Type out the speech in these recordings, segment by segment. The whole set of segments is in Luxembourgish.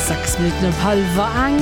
Sechs Minutten op hallwer eng.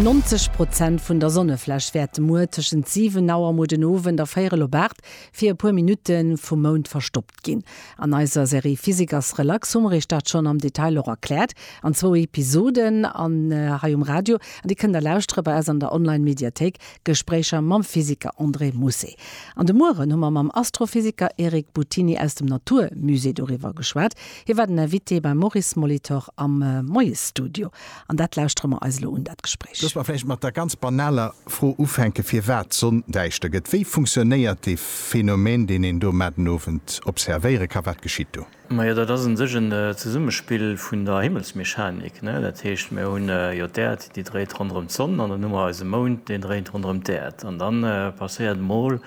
90 Prozent vun der Sonnefläch wäerte muer tëschent 7 Auer muer den Owend a 4 Auer op Aart fir e puer Minutte vum Mound verstoppt ginn. An eiser Serie Physiker's Relax hu mer iech dat schonn am Detail och erkläert an zwou Episoden an hei um Radio. An déi kënnt der lauschtere bei eis an der Online-Mediathéik Gespréicher mam Physiker André Mousset. An de Mueren hu mer mam Astrophysiker Eric Buttini aus dem Natur Musée doriwwer geschwat. Hie war den Invité beim Maurice Molitor am Moiesstudio. An dat lauschtere mer eis elo un, dat Gespréich. Looss mer vläicht mat der ganz banaler Fro ufänken, firwat d'Sonn däischter gëtt. Wéi funktionéiert dee Phänomen, deen een do mat den Owend observéiere ka? Wat geschitt do? Majo, dat ass un sech en Zesummespill vun der Himmelsmechanik, ne? Dat heescht, mir hunn jo d'Äerd, déi dréit ronderëm d'Sonn, an dann hu mer eise Mound, deen dréit ronderëm d'Äerd. An dann passéiert emol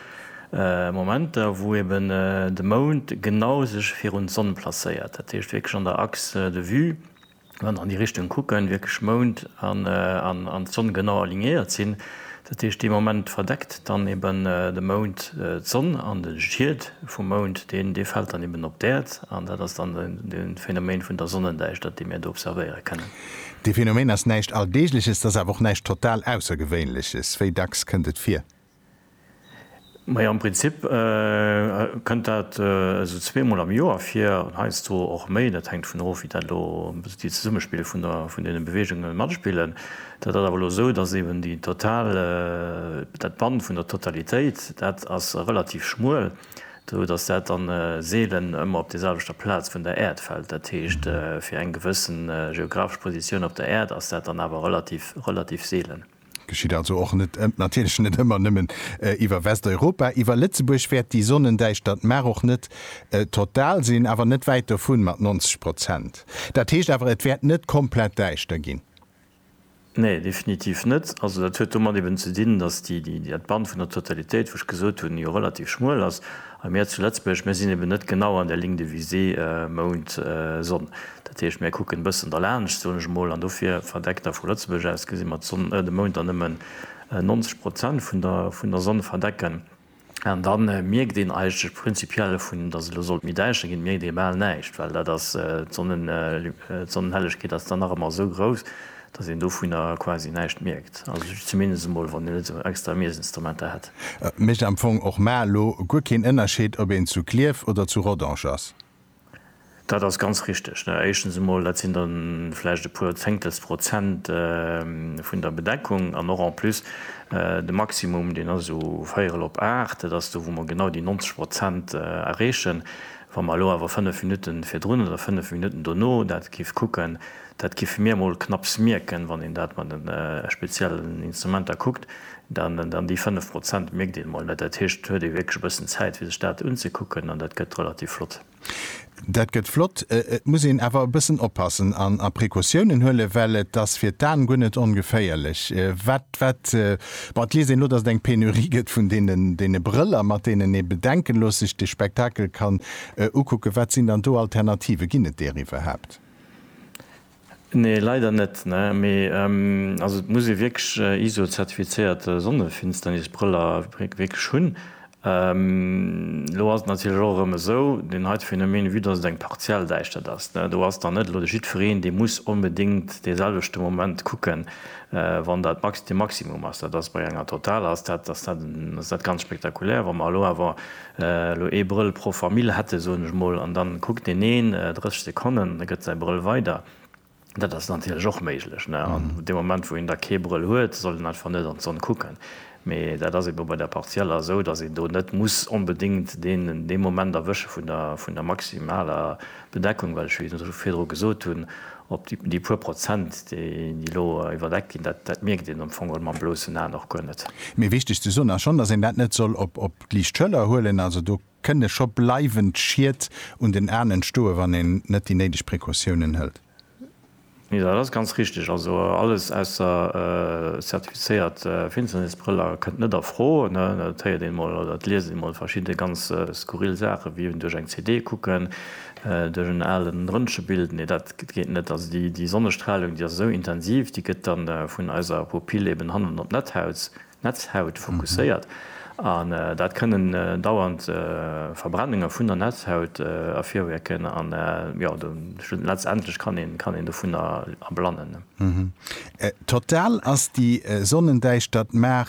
Momenter, wou eben de Mound genau sech virun d'Sonn placéiert, dat heescht wierklech an der Axe de vue. Wann an déi Richtung kucken, wierklech Mound an Sonn genau alignéiert sinn, dat heescht dee Moment verdeckt dann eben de Mound d'Sonn an de Schiet vum Mound dee fält dann eben op d'Äerd an dat ass dann de Phänomen vun der Sonnendäischtert déi mir do observéiere kënnen. Dee Phänomen ass näischt Alldeegleches, et ass awer och näischt total Aussergewéinleches. Wéi dacks kënnt et vir? Majo, am Prinzip kënnt dat esou zweemol am Joer vir, heiansdo och méi. Dat hänkt dovun of, wéi dat elo déi Zesummespill vun der vun deene Beweegunge matspillen. Dat ass awer elo esou, datt eben déi total dat Bann vun der Totalitéit, dat ass relativ schmuel, esou datt dat dann seelen ëmmer op deeselwechter Plaz vun der Äerd fält. Dat heescht, fir eng gewëssen geographesch Positioun op der Äerd ass dat dann awer relativ relativ seelen. Geschitt also och net ëmmer, natierlech net ëmmer nëmmen iwwer Westeuropa. Iwwer Lëtzebuerg wäert déi Sonnendäischtert mar och net total sinn, awer net wäit dovun, mat 90 Prozent. Dat heescht awer, et wäert net komplett däischter ginn. Nee, definitiv net. Also dat huet domat eben ze dinn, datt d'Bann vun der Totalitéit, wou ech gesot hunn, jo relativ schmuel ass. A mir zu Lëtzbuerg, mir sinn eben net genau an der Ligne de visée Mound, Sonn. Dat heescht, mir kucken e bëssen derlaanscht, soen ech emol, an dofir verdeckt da vu Lëtzebuerg aus gesi mer d'Sonn, de Mound dann nëmmen 90 Prozent vun der, vun der Sonn verdecken. An da mierkt een eigentlech prinzipiell, vu datt et elo sollt méi däischter ginn, mierkt ee bal näischt, well dat ass, d'Sonnenhellegkeet ass dann nach ëmmer esou grouss, Dass een dovunner quasi näischt mierkt, also ech zumindest emol, wann een net esou extra Miesinstrumenter hätt. Et mécht am Fong och mar elo guer keen Ënnerscheed, ob een zu Klierf oder zu Rodange ass. Dat ass ganz richtig. Éischtens emol, dat sinn da vläicht e puer Zéngtels Prozent vun der Bedeckung. An och en plus, de Maximum, deen ass u véierel op aacht. Dat ass do, wou mer genau déi 90 Prozent erreechen. Wa mer elo awer fënnef Minutten virdrun oder fënnef Minutten dono dat géife kucken, Dat giffe mir emol knapps mierken, wann een dat mat den speziellen Instrumenter kuckt, dann déi 5 Prozent mierkt een emol net. Dat heescht, et huet ee wierklech e bëssen Zäit fir sech dat unzekucken an dat gëtt relativ flott. Dat gëtt flott, et muss een awer e bëssen oppassen a Precautiounen huelen, well et ass fir d'Aen guer net ongeféierlech. Wat, wat, bon, et liest een elo, datt et eng Penurie gëtt vun deene Brëller, mat deenen ee bedenkenlos sech de Spektakel kann ukucken. Wat sinn dann do Alternativen? Ginn et deer iwwerhaapt? Nee leider net ne, mee also et muss ee wierklech iso zertifizéiert Sonnefinsternisbrëller wierklech hunn. Elo ass et natierlech och erëm esou, deen heite Phänomen vue dass et eng partiell Däischtert ass ne, do ass dann net elo de jiddwereen dee muss onbedéngt dee selwechte Moment kucken wann dat max de maximum ass. Dat ass bei enger total ass dat ass dat ass dat ganz spektakulär. Wa mer elo awer Elo ee Brëll pro Famill hätte soen ech mol, an dann kuckt deen een 30 Sekonnen, da gëtt säi Brëll weider. Dat ass natierlech och méiglech, ne, an dee Moment wou een da kee Brëll huet, soll en einfach net an d'Sonn kucken. Mee dat ass ebe bei der Partielle esou, dass een do net muss onbedéngt deen dee Moment erwësche vun der vun der maximaler. D'Bedeckung, wat ech scho virdru gesot hunn, op déi puer Prozent, déi elo iwwerdeckt ginn, dat mierkt een am Fong mam blossen Aen och guer net. Mee wichteg ze soen ass schonn, datt een dat net soll op d'liicht Schëller huelen. Also do kënne scho bleiwend Schied un den Aen entstoen, wann een net déi néideg Precautiounen hëlt. Jo, dat ass ganz richteg. Also alles ausser zertifizéiert Finsternisbrëller kënnt net a Fro. Dat héiert een emol oder dat liest een emol, verschidde ganz skurril Saachen, wéi duerch eng CD kucken, duerch en alen Röntgenbild. Nee, dat geet net. Also déi Sonnestralung, déi ass esou intensiv, déi gëtt dann vun eiser Pupill eben hannen op d'Netthaut Netzhaut fokusséiert an dat kënnen dauernd Verbrennunge vun der Netzhaut ervirwierken an jo letztendlech kann een kann een dovunner erblannen. Total ass déi Sonnendäischtert mar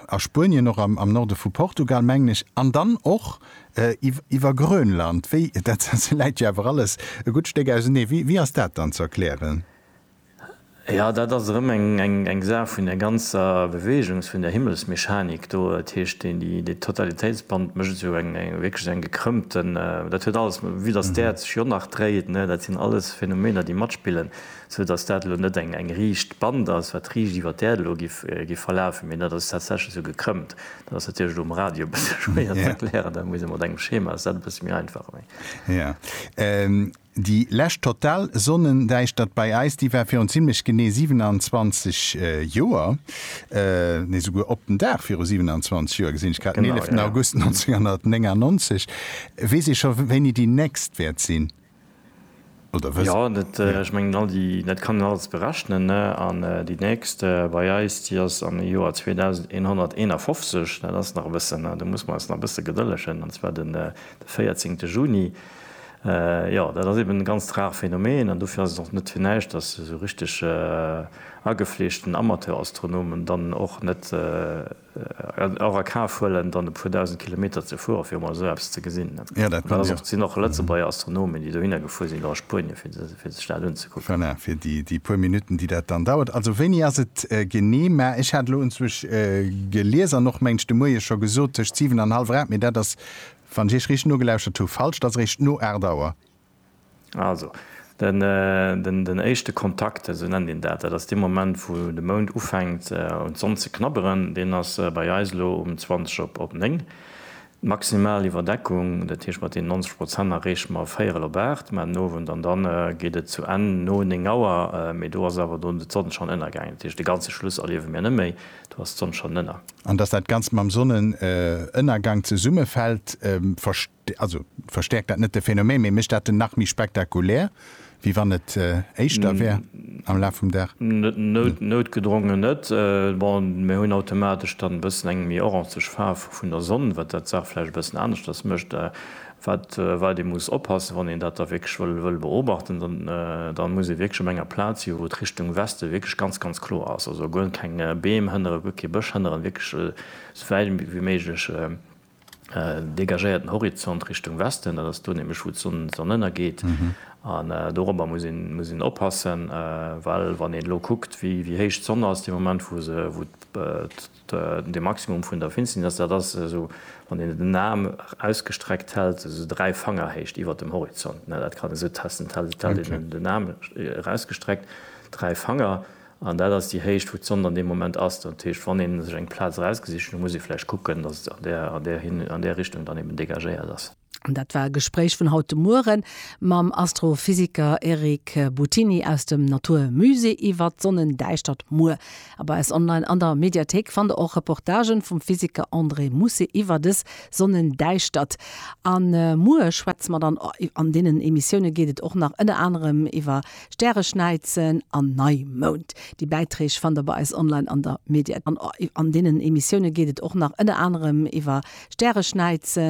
a Spuenien och am Norde vu Portugal mengen ech an dann och iwwer Grönland wéi dat läit jo awer alles e gutt Stéck ausenee wéi ass dat dann ze erklären? Jo, dat ass erëm eng Saach vun där ganzer Beweegung, vun där Himmelsmechanik do. Dat heescht, deen, dee Totalitéitsband mécht esou eng, wierklech eng gekrëmmte, dat huet alles, vue datt d'Äerd sech jo nach dréit, ne, dat sinn alles Phänomener, déi matspillen, sou datt dat elo net eng riicht Band ass, wat riicht iwwer d'Äerd elo géif verlafen, mee dat ass tatsächlech esou gekrëmmt. Dat ass natierlech elo um Radio e bësse schwéier ze erklären, dat muss ee mat engem Schema, ass dat e bësse méi einfach. Déi lescht total Sonnendäischtert bei eis, déi war virun zimmlech genee 27 Joer, nee souguer op den Dag viru 27 Joer, gesinn ech grad, den 11 August 1999. Weess ee scho wéini déi nächst wäert sinn? Jo, dat, ech mengen all déi, dat kann een alles berechnen, ne, an déi nächst bei eis, déi ass am Joer 2151, dat ass nach e bëssen, do muss mer eis nach e bësse gedëllegen, an zwar de 14 Juni. Jo, dat ass eben e ganzt rare Phänomen an dofir ass et och net fir näischt, dass esou richteg agefleeschten Amateurastronomen dann och net och a Kaf huelen, dann e puer dausend Kilometer ze fueren, fir emol esou eppes ze gesinn. Jo, dat kann jo. Et sinn och Lëtzebuerger Astronomen, déi dohinner gefuer sinn, elo a Spuenien, fir sech dat unzekucken. Voilà, fir déi puer Minutten, déi dat dann dauert. Also wéini ass et genee? Mä ech hat elo unzwuesch gelies an och, mengen ech, de Moie scho gesot, tëscht siwen an hallwer aacht, mee dat ass Wann ech Iech riicht nogelauschert hu, falsch, et ass eréischt no 8 Auer. Also, den éischte Kontakt, esou nennt een dat, dat ass dee Moment, wou de Mound ufänkt un d'Sonn ze knabberen, deen ass bei eis elo um 20 op 9. D'maximal Iwwerdeckung, dat heescht mat deenen 90 Prozent, erreeche mer véierel op 8, mä den Owend an dann geet et zu Enn no 9 Auer, mee do ass awer dunn d'Sonn schonn ënnergaangen, dat heescht de ganze Schluss erliewe mir net méi. Do ass d'Sonn schonn ënner. An dass dat Ganzt mam Sonnenënnergank zesummefält, also verstäerkt dat net de Phänomen, mee mécht dat en nach méi spektakulär, wéi wann et éischter wär am Laf vum Dag? Noutgedrongen net. Bon, mir hunn automatesch dann e bëssen eng méi orangeg Faarf vun der Sonn, wat dat d'Saach vläicht e bëssen aneschters mécht. Wat wat ee muss oppassen, wann een dat da wierklech wëll wëll beobachten, dann dann muss ee wierklech op enger Plaz si wou et Richtung Weste wierklech ganz ganz kloer ass, also guer keng Beem hënneren, guer kee Bësch hënneren, wierklech esou wäit ewéi méiglech dégagéierten Horizont Richtung Westen, dat ass do nämlech wou d'Sonn d'Sonn ënnergeet. An dorobber muss een muss een oppassen, well wann een elo kuckt wéi wéi héich d'Sonn ass dee Moment wou se wou De Maximum vun der Finsternis, dat ass esou, wann een den Aarm ausgestreckt hält, esou dräi Fangerhéicht iwwer dem Horizont. Dat kann esou testen, hält een den Aarm erausgestreckt, dräi Fanger, an dat ass déi Héicht, wou d'Sond an deem Moment ass. Dat heescht, wann ee sech eng Plaz erausgesicht huet, da muss ee vläicht kucken, dass et an där Richtung dann eben dégagéiert ass. Dat war e Gespréich vun haut de Mueren mam Astrophysiker Eric Buttini aus dem Natur Musée iwwer d'Sonnendäischtert muer. Ab bei eis online an der Mediathéik fannt der och Reportagen vum Physiker André Mousset iwwer des Sonnendäischtert. An muer schwätze mer dann, an deenen Emissiounen geet et och nach ënner anerem iwwer Stäreschnäizen an Neimound. Déi Bäiträg fannt der bei eis online an der Mediathéik. An deenen Emissiounen geet et och nach ënner anerem iwwer Stäreschnäizen.